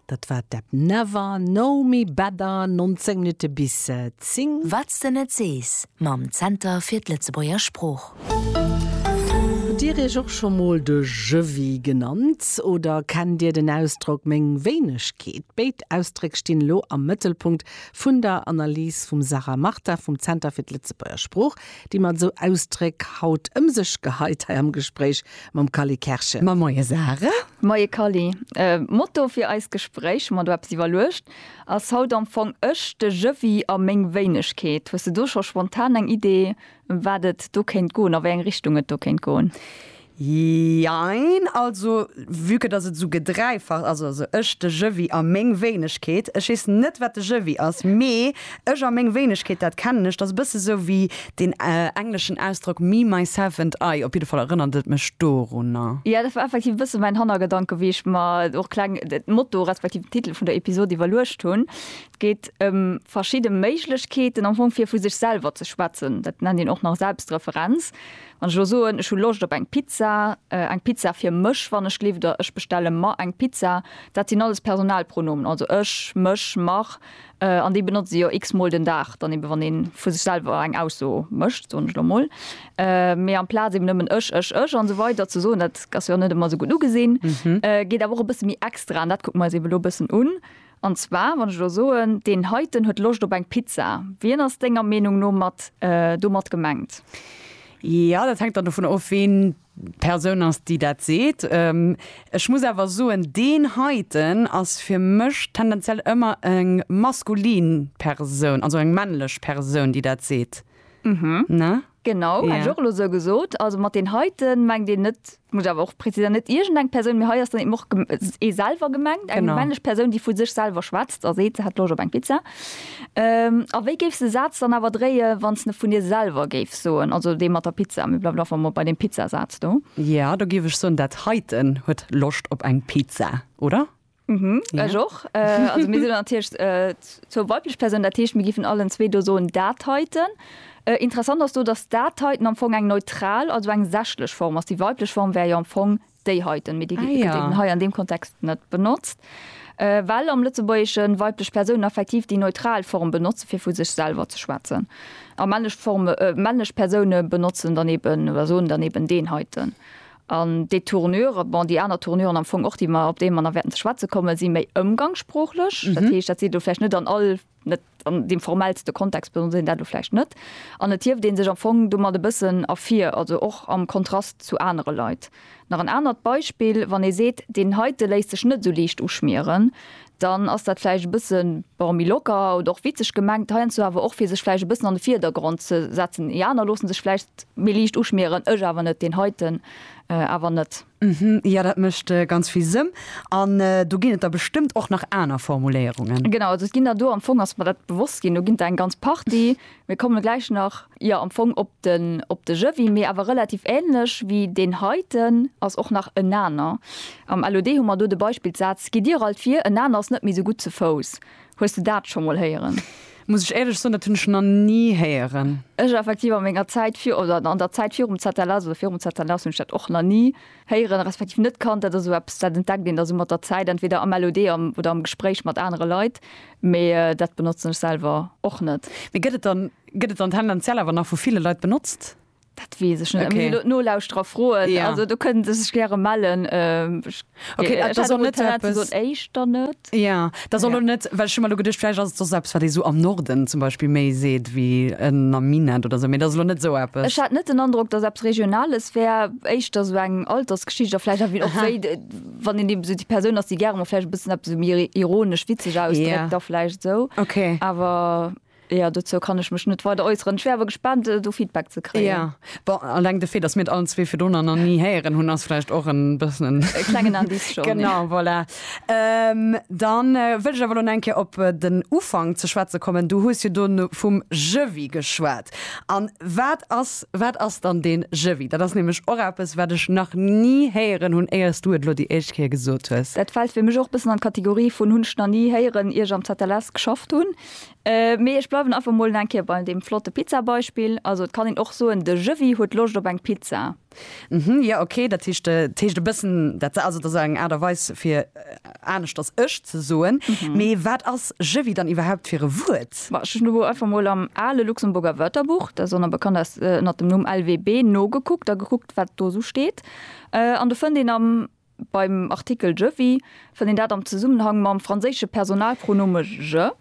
Dat war d'App Never Know Me Better, 19 Minutte bis 10. Wat s de net sees, mam Zenter fir d'Lëtzebuerger Sprooch. Hutt Dir Iech och scho mol de Jëwwi genannt? Oder kennt Dir den Ausdrock meng Wéinegkeet? Béid Ausdréck stinn elo am Mëttelpunkt vun der Analys vum Sarah Martin vum Zenter fir d'Lëtzebuerger Sprooch. déi mat esou Ausdréck haut ëm sech geheit hei am Gespréich mam Kally Kerschen. Ma moie Sarah. Moie Kally. Motto fir eist Gespréich, hu mer do eppes iwwerluecht, ass haut am Fong Ech, de Jëwwi a meng Wéinegkeet. Hues de do scho spontan eng Idee, ëm wat et do kéint goen, a wéi eng Richtung et do kéint goen? Jein, also vue que dass et esou gedreifacht ass, also ech, de Jëwwi a meng Wéinegkeet, ech weess net wat de Jëwwi ass, mee ech a meng Wéinegkeet, dat kennen ech, dat ass e bësse sou wéi deen engleschen Ausdrock me, myself and I, op jidde Fall erënnert et mech dorunner. Jo, dat war effektiv e bësse mäin Hannergedanke wéi ech mer och kleng den Motto respektiv den Titel vun der Episod iwwerluecht hunn. Et geet ëm verschidde Méiglechkeeten am Fong fir vu sech selwer ze schwätzen, dat nennt een och nach Selbstreferenz. Wann ech elo soen, ech hu Loscht op eng Pizza, eng Pizza fir mech, wann ech gelift, oder ech bestelle mer eng Pizza, dat sinn alles Personalpronomen, also ech, mech, mer, an déi benotze si jo x-mol den Dag, dann eebe wann ee vu sech selwer eng Ausso mécht, soen ech elo emol. Mee amplaz eeben nëmmen ech, ech, ech a sou weider ze soen, dat ass jo net ëmmer esou gutt ugesinn, geet awer och e bësse méi extra, an dat kucke mer eis eeben elo e bëssen un. An zwar, wann ech elo soen, deen heiten huet Loscht op eng Pizza, wien ass denger Meenung no mat domat gemengt? Jo, dat hänkt dann dovun of, wien d'Persoun ass, déi dat seet. Ech muss awer soen, deen heiten ass fir mech tendenziell ëmmer eng maskulin Persoun, also eng männlech Persoun, déi dat seet. Genau, hätt ech och elo esou gesot. Also mat den heiten mengt een net, muss ech awer och präziséieren, net iergendeng Persoun, mee hei ass dann eben och ee selwer gemengt, eng männlech Persoun, déi vu sech selwer schwätzt a seet, se hätt Loscht op eng Pizza. A wéi géifs de Saz dann awer dréie wann s de vun dir selwer géifs soen, also dee mat der Pizza, mir bleiwen einfach mol bei deem Pizzasaz do. Jo, da géif ech soen, dat heiten huet Loscht op eng Pizza, oder? Mhm, ja. Ech och. Äh, also mir sinn anhircht äh, zur weiblech Persoun dat Teescht mir gifen allen zwee do soen dat heiten. Äh, interessant ass du, dass dat heiten am Fong eng neutral, also eng sächlech Form ass. Déi weiblech Form wär jo am Fong déi heiten, mir déi ah, ja. hei an dem Kontext net benotzt. Äh, well am Lëtzebuergeschen weiblech Persoun effektiv déi neutral Form benotze fir vu sech selber ze schwätzen. A männlech Form äh, männlech Persoune benotzen daneben oder soen daneben den heiten. An déi Tournure, bon, déi aner Tournuren am Fong och, déi mer, op déi mer nach wäerten ze schwätze kommen, si méi ëmgangssproochlech. Dat heescht, dat seet elo vläicht net an all, net an deem formellste Kontext benotzt een dat elo vläicht net. An et hieft ee sech am Fong domat e bëssen ervir, also och am Kontrast zu anere Leit. Nach en anert Beispill, Wann ee seet, deen heite léisst sech net esou liicht uschmieren, dann ass dat vläicht e bësse, bon, méi locker oder och witzeg gemengt, heiansdo awer och, fir sech vläicht e bëssen an de Vierdergrond ze setzen. Déi aner loosse sech vläicht méi liicht uschmieren, ech awer net, deen heiten awer net. Jo, dat mécht ganz vill Sënn. An do ginn et der bestëmmt och nach aner Formuléierungen. Genau, also et ginn der do, am Fong ass mer dat bewosst ginn, do ginn der eng ganz Partie. Mir komme gläich nach, jo, am Fong op den, op de Jëwwi, mee awer relativ ähnlech wéi deen heiten ass och nach en aner. Am LOD hu mer do de Beispillssaz, Gitt dir alt vir, en aner ass net méi sou gutt zu Fouss. Hues de dat scho mol héieren? Muss ech éierlech soen, dat hunn ech nach ni héieren. Ech effektiv a menger Zäit vir, oder an der Zäit virum ZLS oder virum ZLS hunn ech dat och nach ni héieren, respektiv net kannt, dat ass esou eppes, dat entdeckt een da sou mat der Zäit, entweder am LOD oder am Gespréich mat anere Leit, mee dat benotzen ech selwer och net. Mee gëtt et dann, gëtt et dann tendenziell awer nach vu ville Leit benotzt? Dat weess ech net, da muss ech elo d'Nolauschterer froen. Also do kënnen se sech gäre mellen. Ech hätt och net direkt gesot éischter net. Ja, dat ass elo net, well ech hu mer elo geduecht, vläicht ass et soss eppes, wat ee sou am Norden zum Beispill méi seet wéi en am Minett oder sou, mee dat ass elo net sou eppes. Ech hat net den Androck, datt eppes Regionales wär, éischter sou eng Altersgeschicht a vläicht ewéi och wéi, wann een eben sou déi Persoun ass, déi gäre mol vläicht e bëssen eppes sou méi ironesch, witzeg ausdréckt da vläicht sou, awer. Jo, dozou kann ech mech net weider äusseren. Ech wär awer gespaant, do Feedback ze kréien. Jo, bon, alleng de Fait, dass mir et allen zwee virdrunner nach ni héieren hunn, ass vläicht och e bëssen en. E klengen Indice schonn. Genau, voilà. Da wëll ech awer elo nach eng Kéier op den Ufank ze schwätze kommen. Du hues jo do vum Jewie geschwat. An wat ass, wat ass dann dee Jewie? Dat ass nämlech och eppes, wat ech nach ni héieren hunn, éier s du et elo déi éischt Kéier gesot hues. Dat fält fir mech och e bëssen an d'Kategorie vun hunn ech nach ni héieren, ier ech am ZLS geschafft hunn. Mee ech bleiwen einfach mol eng Kéier bei deem flotte Pizzabeispill. Also et kann een och soen, de Jëwwi huet Loscht op eng Pizza. Hm, jo, ok, dat heescht, et heescht e bëssen dat se. Also et ass eng Aart a Weis fir aneschters ech ze soen. Mee wat ass Jëwwi dann iwwerhaupt fir e Wuert? Bah, ech hunn elo einfach mol am ale Luxemburger Wörterbuch, dat ass och nach bekannt aus ënner dem Numm LWB, nogekuckt a gekuckt, wat do esou steet. An do fënnt een am. Beim Artikel je vis fënnt een dat am Zesummenhang mam franséische Personalpronome je.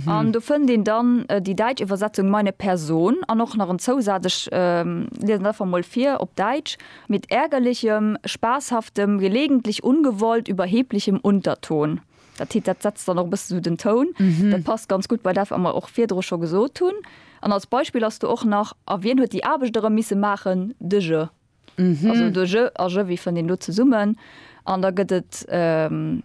An do fënnt een dann déi däitsch Iwwersetzung meine Person an och nach en Zousaz, ech liesen dat einfach mol vir op Däitsch, mit ärgerlichem, spaßhaftem, gelegentlich ungewollt überheblichem Unterton. Dat heet, dat setzt dann och e bësse sou den Toun. Dat passt ganz gutt bei dat, wat mer och virdru scho gesot hunn. An als Beispill ass do och nach, A wien huet déi Aarbecht erëm misse maachen? De je. Also do je a jevi fënnt een do zesummen an da gëtt et,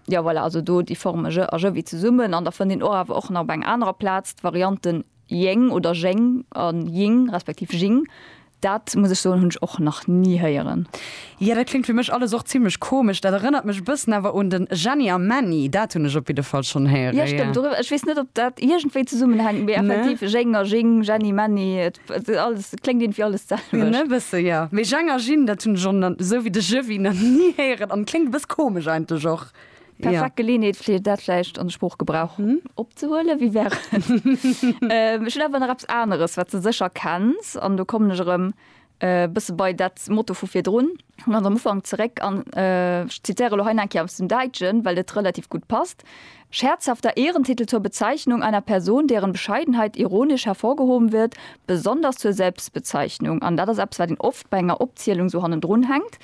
jo voilà, also do déi Forme je a jevi zesummen an da fënnt een och awer och nach op enger anerer Plaz d'Variante jeng oder jeng a jing respektiv jing. Dat muss ech soen, hunn ech och nach ni héieren. Jo, dat kléngt fir mech alles och zimlech komesch. Dat erënnert mech e bëssen awer un den Jenny a Männi. Dat hunn ech op jidde Fall schonn héieren, jo. Jo stëmmt, dorëwwer, ech weess net, ob dat iergendwéi zesummenhänkt, mee effektiv, jeng a jing, Jenny, Männi. Alles klingt irgendwie alles selwecht. Ne bësse ja. Mee Jang a Jin, dat hunn ech och esou wéi de Jëwwi nach ni héieren an kléngt e bëss komesch eigentlech och. Perfekt Geleeënheet fir dat vläicht an de Sproochgebrauch opzehuelen. Wie wär et? Ech hunn awer nach eppes aneres, wat s de sécher kenns an do kommen ech erëm e bësse bei dat Motto vu virdrun. Ech kommen am Ufank zeréck an ech zitiere lo hei nach eng Kéier aus dem Däitschen, well et relativ gutt passt, Scherzhafter Ehrentitel zur Bezeichnung einer Person, deren Bescheidenheit ironisch hervorgehoben wird, besonders zur Selbstbezeichnung. An dat ass eppes, wat een oft bei enger Opzielung esou hannendrun hänkt,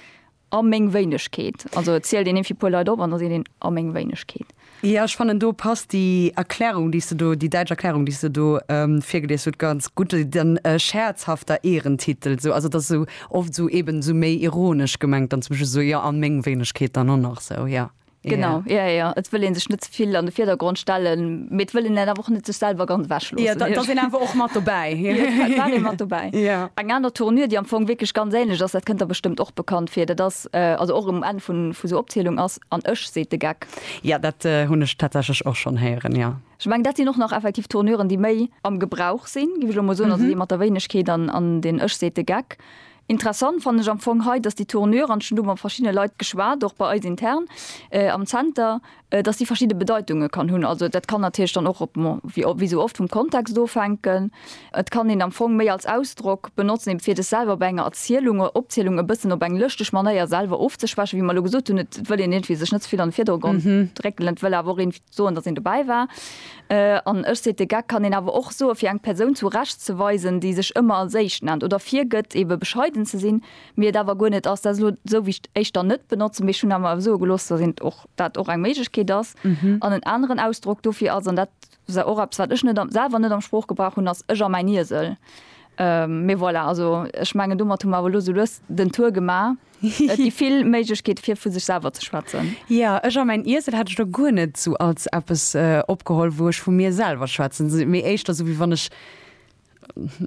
a meng Wéinegkeet. Also et zielt een ee fir e puer Leit op an da seet een, a meng Wéinegkeet. Jo, ech fannen do passt déi Erklärung, déi s de do, déi däitsch Erklärung, déi s de do virgelies hutt, ganz gutt. Den scherzhafter Ehrentitel, esou, also et ass esou oft esou eeben esou méi ironesch gemengt dann zum Beispill, esou, jo, an meng Wéinegkeet dann och nach, esou, jo. Genau, jo, jo, et wëll ee sech net ze vill an de Virdergrond stellen, mee et wëll een et awer och net sech selwer ganz ewechloossen. Jo, et ass een awer och mat dobäi. Jo, et war ee mat dobäi. Jo. Eng aner Tournure, déi am Fong wierklech ganz ähnlech ass, dat kënnt der bestëmmt och bekannt vir, dat ass, also och um Enn vun, vun esou Opzielung, ass, An ech, seet de Geck. Jo, dat hunn ech tatsächlech och schonn héieren, jo. Ech mengen, dat sinn och nach effektiv Tourneuren, déi méi am Gebrauch sinn, géif ech elo mol soen, also dee mat der Wéinegkeet an den ech, seet de Geck. Interessant fannen ech am Fong hei, dass déi Tourneuren, an ech hunn do mat verschiddene Leit geschwat, och bei eis intern am Zenter, dass déi verschidde Bedeitunge kann hunn. Also dat kann natierlech dann och op, wéi esou oft, vum Kontext ofhänken. Et kann een am Fong méi als Ausdrock benotzen, eben fir sech selwer bei enger Erzielung oder Opzielung e bëssen op eng lëschteg Manéier selwer ofzeschwächen, wéi mer elo gesot hunn, et wëll een iergendwéi sech net ze vill an de Virdergrond drécken, et wëll awer och een soen, datt een dobäi war. An ech seet, de Geck kann een awer och soe fir eng Persoun zu Recht ze weisen, déi sech ëmmer als éischt nennt oder virgëtt, ebe bescheiden ze sinn, mee et awer guer net ass. Dat ass elo esou, wéi ech et éischter net benotzen, mee ech hunn awer soe gelooss, datt dat och eng Méiglechkeet ass. An en aneren Ausdrock dofir ass, an dat Sou, och eppes wat ech net am, selwer net am Sproochgebrauch hunn ass ech a mäin Iesel. Mee voilà, also ech mengen domat hu mer awer elo sou lues den Tour gemaach. Et gi vill Méiglechkeete fir vu sech selwer ze schwätzen. Jo, ech a mäin Iesel hat ech do guer net esou als eppes opgeholl wou ech vu mir selwer schwätzen, mee éischter sou wéi wann ech.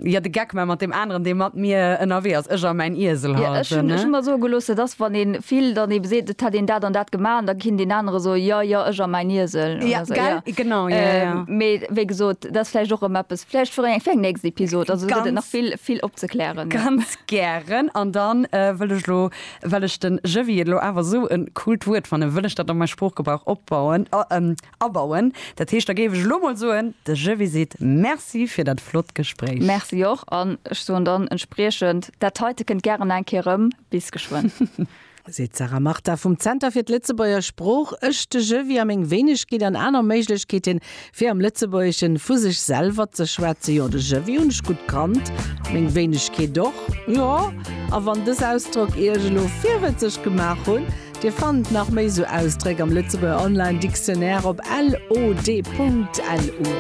Jo, de Geck man mat deem aneren, dee mat mir ënnerwee ass, ech a mäin Iesel halt, ne? Ech hunn mer soe gelooss, dat ass, wann ee vill dann ebe seet, et hätt een dat an dat gemaach, an da kinnt deen anere soen, jo, jo, ech a mäin Iesel. Jo, gell, genau, jo, jo. Mee wéi gesot, dat ass vläicht och erëm eppes, vläicht fir eng nächst Episod, also do gëtt et nach vill, vill opzeklären. Ganz gären. An da wëll ech elo, well ech de Jëwwi et elo awer esou en coolt Wuert fannen, wëll ech dat a mäi Sproochgebrauch opbauen, Abauen. Dat heescht, da géif ech elo mol soen, de Jhemmy seet Merci fir dat flott Gespréich. Merci och. An ech soen dann entspriechend, Dat heite kënnt gären nach eng Kéier erëm. Bis geschwënn. Seet d'Sarah Martha vum Zenter fir d'Lëtzebuerger Sprooch. Ech, de Jhemmy a meng Wéinegkeet an aner Méiglechkeete fir am Lëtzebuergesche vu sech selwer ze schwätzen, jo, de Jhemmy hunn ech gutt kannt, meng Wéinegkeet och, jo. A wann dës Ausdrock Iech elo virwëtzeg gemaach hunn, Dir fannt nach méi sou Ausdréck am Lëtzebuerger Online Dictionnaire op lod.lu.